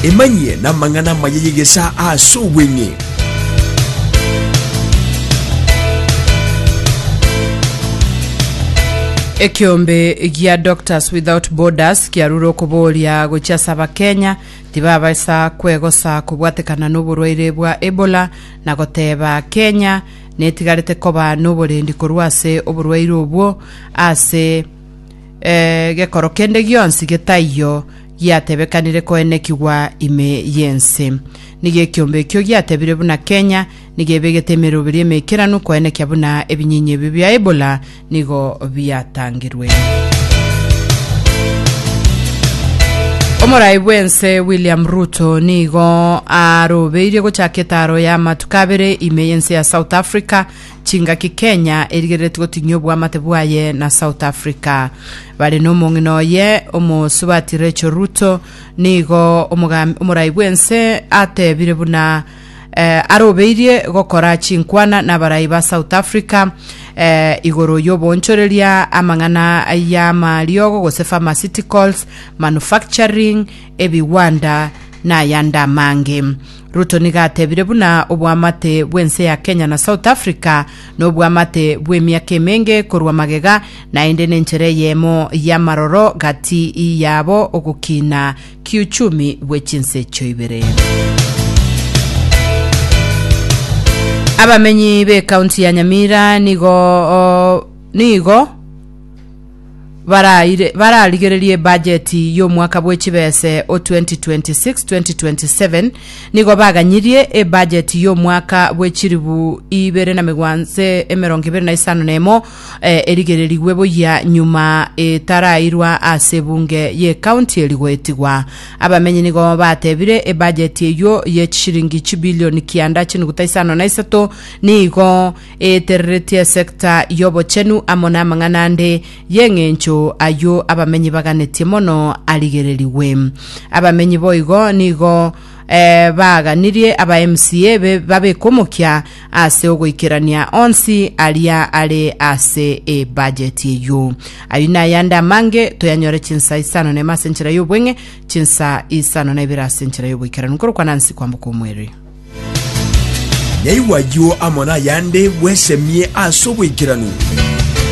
Emanyie namang'ana amaya y'egesaa ase obweng'e. Ekeombe gia Doctors Without Borders kiarure okoboria gochia ase Abakenya tibabasa kwegosa kobwatekana noborwaire bwa Ebola na goteba Kenya netigarete koba noborendi korwa ase oborwaire obwo ase Ee, gekoro kende gionsi getaiyo giatebekanire koenekigwa ime y'ense. Nigo ekiombe ekio giatebire buna Kenya nigo ebegete emeroberi emeikeranu koenekia buna ebinyinyi ebio bia Ebola nigo biatangirwe. Omorai bw'ense William Ruto nigo arobeirie gochaka etaro y'amatuko abere ime y'ense ya South Africa Chingaki Kenya erigereretie gotinyia oboamate bwaye na South Africa. Bare nomong'ina oye omosubati Rachel Ruto nigo omogam- omorai bw'ense atebire buna eh, arobeirie gokora chinkwana n'abarai ba South Africa eh, igoro y'oboonchoreria amang'ana y'amariogo gose pharmaceuticals, manufacturing, ebigwanda, na ayande amange. Ruto nigo atebire buna obwamate bw'ense ya Kenya na South Africa nobwamate bw'emiaka emenge korwa magega, naende nenchera eyemo y'amaroro gati yabo ogokina kiuchumi bwe chinse echio ibere. Abamenyi b'ekaunti ya Nyamira nigo nigo baraire bararigererie ebajeti y'omwaka bwe chibese o 2026-2027 nigo baganyirie ebajeti y'omwaka bwe chiribu ibere na megwanse emerongo ibere na isano na emo eh, erigererigwe boyia nyuma etarairwa ase ebunge y'ekaunti eri goetigwa abamenyi nigo batebire ebajeti eyio ye chishiringi chibilioni kianda chinuguta isano na isato nigo eetereretie esecta y'obochenu amo namang'ana ande y'eng'encho ayio abamenyi baganetie mono arigererigwe. Abamenyi boigo nigo eh, baaganirie aba MCA be babeke omokia ase ogoikerania onsi aria are ase ebajeti eyio. Ayio nayande amange toyanyore chinsa isano nema ase enchera y'obweng'e, chinsa isano na ibere ase enchera y'oboikeranu, nkorokwana nsi kwamboka omweri. Naigwa ayio amo nayande bwesemie as'oboikeranu.